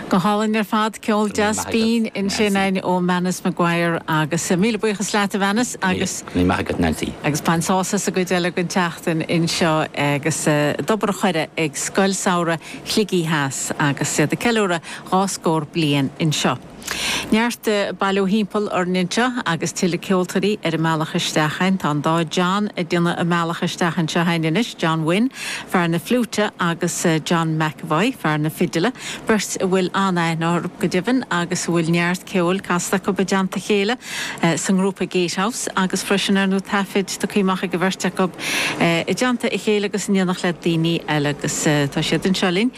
Go hálainn ar fad, ceol deas binn ansin ó Manus Maguire agus míle buíochas leat a Mhanus agus bain sás as an gcuid eile den tseachtain anseo agus d'obair ar ndóigh ag Scoil Samhraidh Shligigh Theas agus iad ag ceiliúradh dhá scór bliain anseo. Neart bailithe timpeall orainn anseo agus tuilleadh ceoltóirí ar a mbealach isteach a'inn. Tá an dá John ag déanamh a mbealach isteach anseo a'inn anois, John Wynne, fear na fliúite agus John McEvoy, fear na fidile, beirt a bhfuil an-aithne orthu go deimhin agus a bhfuil neart ceoil casta acu i dteannta a chéile sa ngrúpa Gatehouse agus freisin ar ndóigh taifid tugtha amach ag an bheirt acu i dteannta a chéile agus in éineacht le daoine eile agus tá siad anseo linn.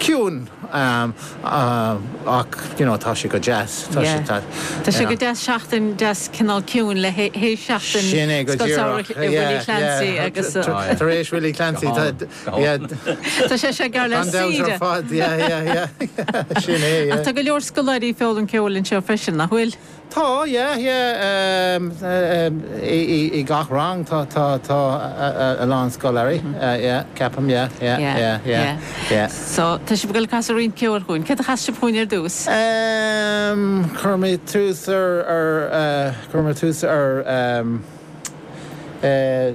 ciúin ach you know tá sé go deas. Tá sé go deas seachtain deas cineál ciúin le hais seachtain Scoil Samhraidh Willie Clancy agus. Tar éis Willie Clancy tá. Tá sé seo gar le saoire. Tá go leor scoláirí ag foghlaim ceoil anseo freisin nach bhfuil? Tá, yeah, yeah, i gach rang tá a lán scoláirí, yeah, ceapaim, yeah, yeah, yeah, yeah, yeah. So, tá sibh ag dul ag casadh roinnt ceoil chugainn. Céard a chasfas sibh chugainn ar dtús? Ehm, cuirfidh mé tús ar, cuirfidh mé tús ar, eh.